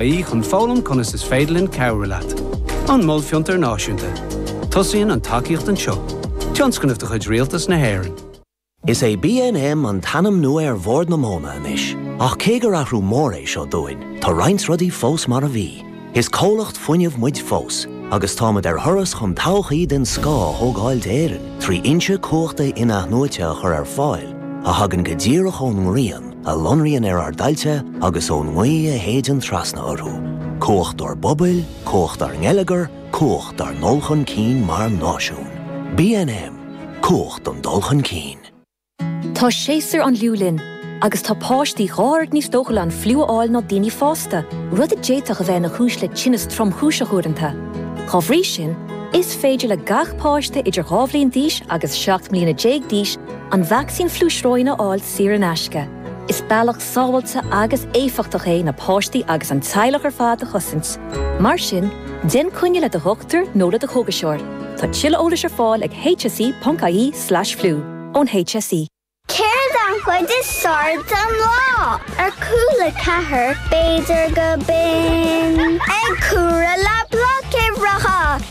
aí chun foghlaim conas is féidir linn cabhrú leat. An Mol Fiontair Náisiúnta. Tosaíonn an tacaíocht anseo. Tionscnamh de chuid Rialtas na hÉireann. Is é BNM an t-ainm nua ar Bhord na Móna anois, ach cé gur athrú mór é seo dúinn, tá roinnt rudaí fós mar a bhí. Is comhlacht fuinnimh muid fós, agus táimid ar thuras chun todhchaí den scoth a thógáil d'Éirinn trí fhoinse cumhachta in-athnuaite a chur ar fáil a thagann go díreach ón ngrian, a lonraíonn ar ár dtailte agus ón ngaoth a shéideann trasna orthu, cumhacht ár bpobail, cumhacht ár ngeilleagar, cumhacht ár ndul chun cinn mar náisiún. BNM, Cumhacht don dul chun cinn. Tá séasúr an fhliú linn agus tá páistí dhá oiread níos dóchúla an fliú a fháil ná daoine fásta, rud a d'fhéadfadh a bheith ina chúis le tinneas tromchúiseach uaireanta. Dá bhrí sin, is féidir le gach páiste idir dhá bhliain d'aois agus 17 mbliana d'aois an vacsaín fliú sróine a fháil sa saor in aisce. Is bealach sábháilte agus éifeachtach é na páistí agus an teaghlach ar fad a chosaint. Mar sin, déan coinne le do dhochtúir nó le do chógaiseoir. Tá tuilleadh eolais ar fáil ag hse.ie/flu ón HSE. Céard an chuid is fearr den lá? Ar chúl a ceathair, b'fhéidir go binn. Ag cúradh le bloicéireacha.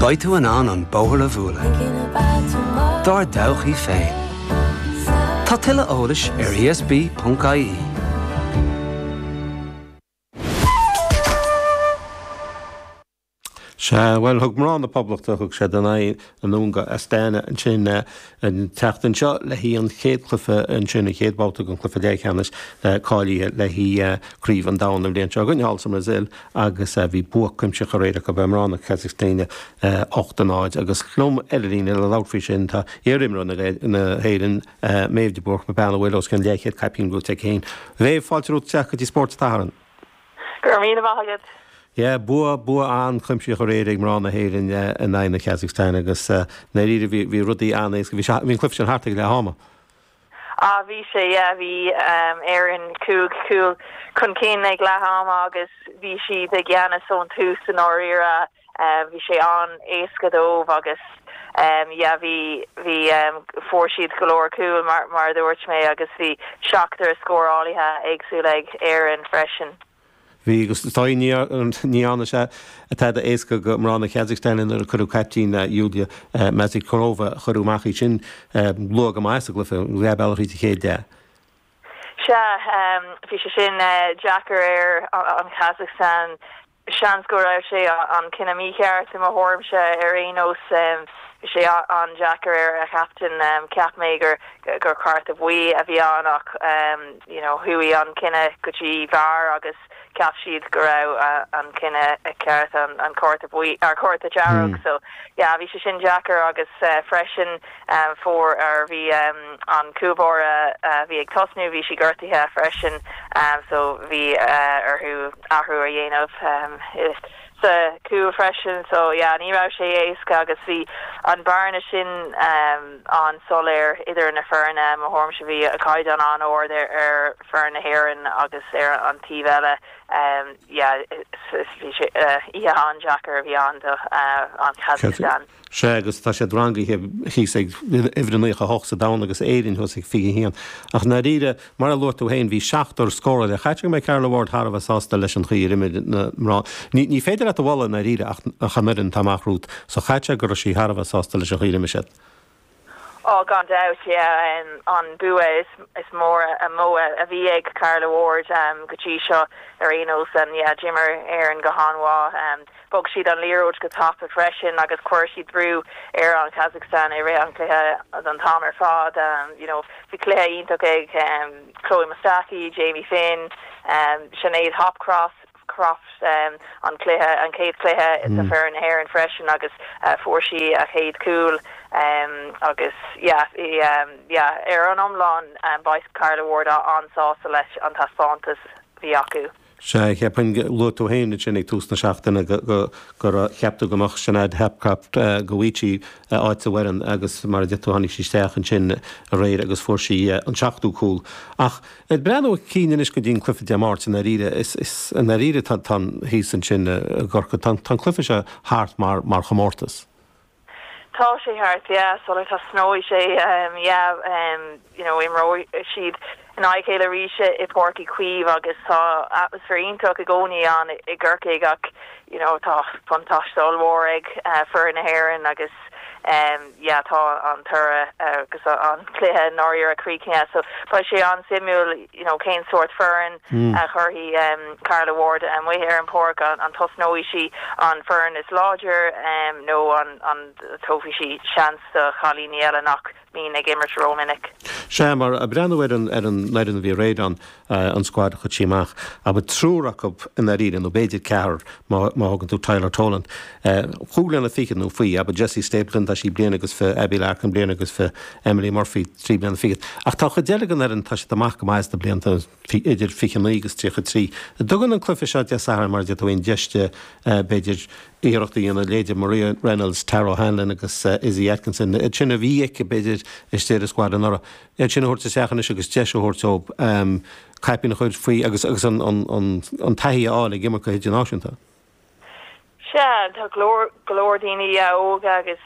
Beidh tú in ann an bóthar a bhualadh dár dtodhchaí féin. Tá tuilleadh eolais ar ESB.ie. Sea, bhuel, thug mná na Poblachta, thug siad a n-aghaidh anonn go Astana, ansin, An tseachtain seo, le haghaidh an chéad cluiche, ansin an chéad bhabhta den cluiche leathcheannais cáilithe le haghaidh craobh an domhain an bhliain seo chugainn thall sa mBrasaíl agus bhí bua cuimsitheach aréir acu ar mhná na Casacstáine, hocht a náid. Agus liom ar an líne le labhairt faoi sin, tá iar-imreoir na hÉireann, Méabh de Búrca, bean a bhfuil os cionn leathchéad caipín buaite aici féin. A Mhéabh, fáilte romhat isteach go dtí Spórt an tSathairn. Go raibh míle maith agat! Yeah, bua, bua an-chuimsitheach aréir ag mná na hÉireann in aghaidh na Kazakhstan agus i ndáiríre bhí, bhí rudaí an-éasca, bhí sé, bhí an cluiche sin thart ag leath ama. Ah bhí sé, yeah, bhí Éireann cúig chúl chun cinn ag leath ama agus bhí siad i gceannas ón tús i ndáiríre. Bhí sé an-éasca dóibh agus yeah bhí, bhí, fuair siad go leor cúl mar, mar a dúirt mé agus bhí seachtar scórálaithe éagsúla ag Éirinn freisin. Bhí agus dár ndóigh, ní dhearna sé tada éasca do mhná na Kazakhstan nuair a cuireadh caiptín Yuliya Myasnikova, cuireadh amach í sin luath go maith sa gcluiche, leath bealaigh tríd an chéad leath. Sea, bhí sé sin deacair ar an Kazakhstan Seans go raibh sé an cinneadh mícheart, i mo thuairimse ar aon nós. Bhí sé an-deacair ar an gcaptaen, cheap mé gur cárta buí a bhí ann ach you know chuaigh an cinneadh go dtí VAR agus cheap siad go raibh an cinneadh ceart an cárta buí, cárta dearg so yeah bhí sé sin deacair agus freisin, Fuair ar bhí an cúl báire a bhí ag tosnú, bhí sí gortaithe freisin so bhí orthu athrú a dhéanamh sa chúl freisin so yeah ní raibh sé éasca agus bhí an bearna sin an-soiléir idir na foirne, mo thuairimse bhí caighdeán an-ard ar foireann na hÉireann agus ar an taobh eile yeah oíche an-deacair a bhí ann do an Kazakhstan. Sea, agus tá siad rangaithe thíos ag uimhir a naocha a hocht sa domhan agus Éire thuas ag fiche haon. Ach, i ndáiríre, mar a luaigh tú féin, bhí seachtar scórálaí caithfidh go mbeidh Carla Ward thar a bheith sásta leis an chaoi ar imir na mná. Ní ní féidir leat a bhualadh i ndáiríre ach an fhoireann atá amach romhat. So caithfidh go raibh sí thar a bheith sásta leis an chaoi ar imir siad. Oh, gan dabht, yeah. An bua is mór mó a bhí ag Carla Ward go dtí seo ar aon nós. Yeah, d'imir Éirinn go han-mhaith. Bhog siad an liathróid go tapa freisin agus chuir siad brú ar an Kazakhstan i rith an chluiche an t-am ar fad. You know, bhí cluiche iontach ag Chloe Mustaki, Jamie Finn, Sinéad Hopcroft. Crofts an cluiche, an chéad chluiche do foireann na hÉireann freisin agus fuair sí a céad cúl agus yeah yeah ar an iomlán beidh Carla Ward an-sásta leis an taispeántas bhí acu. Sea, cheapfainn, luaigh tú féin ansin ag tús na seachtaine gur cheap tú go mbeadh Sinéad Hopcroft, go bhfaigheadh sí áit sa bhfoireann agus mar a deir tú tháinig sí isteach ansin aréir agus fuair sí an seachtú cúl ach, Ag breathnú chun cinn anois go dtí an cluife Dé Máirt, i ndáiríre, is i ndáiríre tá an, thíos ansin i gCorcaigh, tá an cluife seo thart mar chomórtas. Tá sé thart, yeah, sula dtosnóidh sé, yeah, you know, imreoidh siad in aghaidh a chéile arís i Páirc Uí Chaoimh agus tá atmaisféar iontach i gcónaí ann i gCorcaigh ach, you know tá buntáiste ollmhór ag foireann na hÉireann agus yeah tá an toradh agus an cluiche i ndáiríre críochnaithe so beidh sé an-suimiúil you know cén sórt foireann a chuirfidh Carla Ward amuigh ar an bpáirc, an dtosnóidh sí an foireann is láidre nó an dtabharfaidh sí seans do chailíní eile nach. Bhínn ag imirt ró-mhinic. Sea, mar ag breathnú ar an fhoireann a bhí aréir ann, an scuad a chuir sí amach, abair triúr acu i ndáiríre, nó b'fhéidir ceathrar má thógann tú Tyler Toland. Cúig bliana fichead, nó faoi, abair Jessie Stapleton, tá sí bliain agus fiche, Abbie Larkin bliain agus fiche, Emily Murphy trí bliana fichead. Ach tá an chuid eile den fhoireann, tá siad amach go maith sna blianta, idir fiche naoi agus tríocha trí. Tugann an cluiche seo Dé Sathairn, mar a d'fhéadfadh aon deis di, b'fhéidir, iarracht a dhéanamh leithéidí Maria Reynolds, Tara O'Hanlon agus Izzy Atkinson, iad sin a bhí aici, b'fhéidir, istigh sa squad anuraidh. Iad sin a thabhairt isteach anois agus deis a thabhairt dóibh caipín a chur faoi agus agus an taithí a fháil ag imirt go hidirnáisiúnta. Sea, tá go leor, go leor daoine óga agus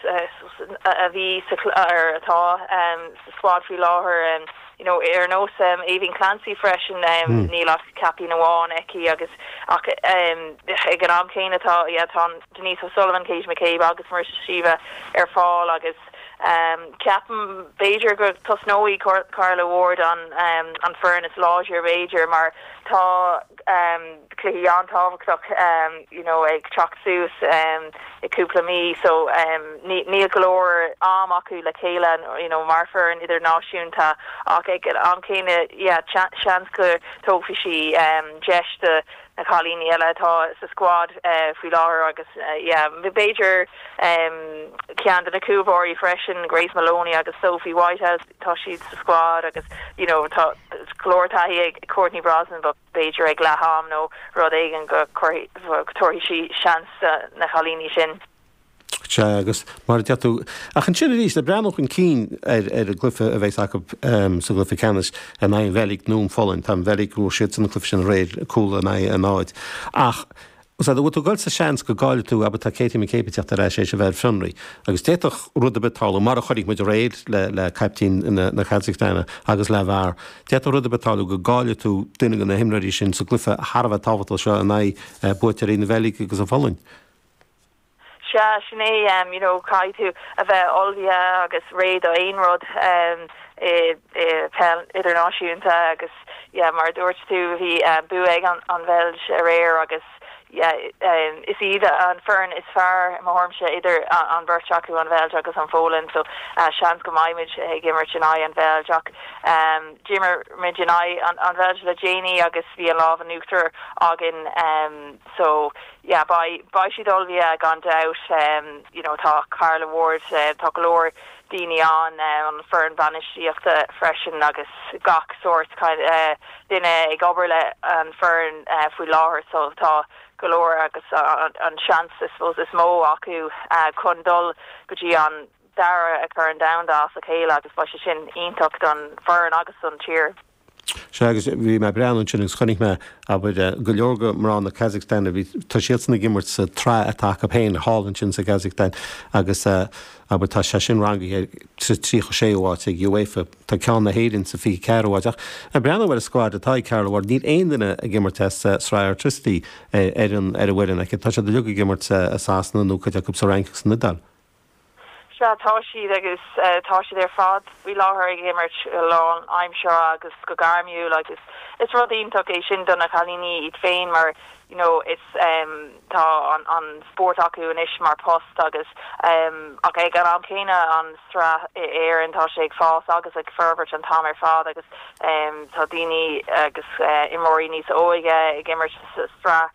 a bhí sa, ar atá sa squad faoi láthair, you know, ar nós Aoibheann Clancy freisin, níl ach caipín amháin aici agus ach ag an am céanna tá, yeah, tá Denise O'Sullivan, Katie McCabe agus Marissa Sheva ar fáil agus ceapaim b'fhéidir go tosnóidh Carla Ward an foireann is láidre b'fhéidir mar tá, cluichí an-tábhachtach you know ag teacht suas i gcúpla mí so níl go leor am acu le chéile you know mar foireann idirnáisiúnta ach ag an am céanna yeah seans go dtógfaidh sí deis do na cailíní eile atá sa squad faoi láthair agus yeah b'fhéidir ceann de na cúlbáirí freisin, Grace Moloney agus Sophie Whitehouse, tá siad sa squad agus you know tá go leor taithí ag Courtney Brosnan but b'fhéidir ag leath am nó rud éigin go dtabharfaidh sí seans do na cailíní sin. Sea, agus mar a deir tú, ach ansin arís, le breathnú chun cinn ar an gcluiche a bheas acu sa gcluiche ceannais in aghaidh an Bheilg nó an Pholainn, tá an Bheilg, bhuaigh siad an cluiche sin aréir, cúl in aghaidh a náid ach, Más ea, bhfuil tú ag dul sa seans go gcaillfidh tú, abair, tá Katie McCabe ag teacht ar ais, éis a bheith ar fionraí, agus d'fhéadfadh rud ar bith tarlú, mar a chonaic muid aréir le caiptín na Casacstáine agus leath bhfear, d'fhéadfadh rud ar bith tarlú go gcaillfidh tú duine de na himreoirí sin sa gcluiche thar a bheith tábhachtach seo in aghaidh buaiteoirí na Beilge agus an Pholainn. Sea, sin é, em, you know, caithfidh tú a bheith ullmhaithe agus réidh do aon rud, em, i, i, peil idirnáisiúnta agus, yeah, mar a dúirt tú, bhí, em, bua ag an, an Bheilg aréir agus, yeah, em, is iad an foireann is fearr, i mo thuairimse, idir an bheirt acu, an Bheilg agus an Pholainn, so, eh, seans go mbeidh muid ag imirt in aghaidh an Bheilg ach, em, d'imir muid in aghaidh an, an Bheilg le déanaí agus bhí an lámh in uachtar againn, em, so. yeah beidh beidh siad ullamh yeah gan dabht em you know tá Carla Ward eh tá go leor daoine ann eh an foireann bainistíochta freisin agus gach sórt eh duine ag obair le an foireann eh faoi láthair so tá go leor agus an an seans I suppose is mó acu ah chun dul go dtí an dara Corn Domhanda as a chéile agus beidh sé sin iontach don foireann agus don tír. Sea, agus bhí mé ag breathnú ansin agus chonaic mé, abair, go leor de mná na Casacstáine, bhí, tá siadsan ag imirt sa tsraith atá acu féin thall ansin sa Chasacstáin agus, abair, tá sé sin rangaithe sa tríocha séú háit ag UEFA, tá ceann na hÉireann sa fiche ceathrú háit. Ach ag breathnú ar an scuad atá ag Carla Ward, níl aon duine ag imirt i Sraith Airtricity ar an, ar an bhfoireann aici, tá siad uilig ag imirt i Sasana nó cuid acu sa Fhrainc agus san Iodáil. Sea, tá siad, agus tá siad ar fad faoi láthair ag imirt go lánaimseartha agus go gairmiúil agus is rud iontach é sin do na cailíní iad féin mar you know is em tá an spórt acu anois mar post agus em ach ag an am céanna an tsraith i Éirinn tá sé ag fás agus ag forbairt an t-am ar fad agus em tá daoine agus imreoirí níos óige ag imirt sa tsraith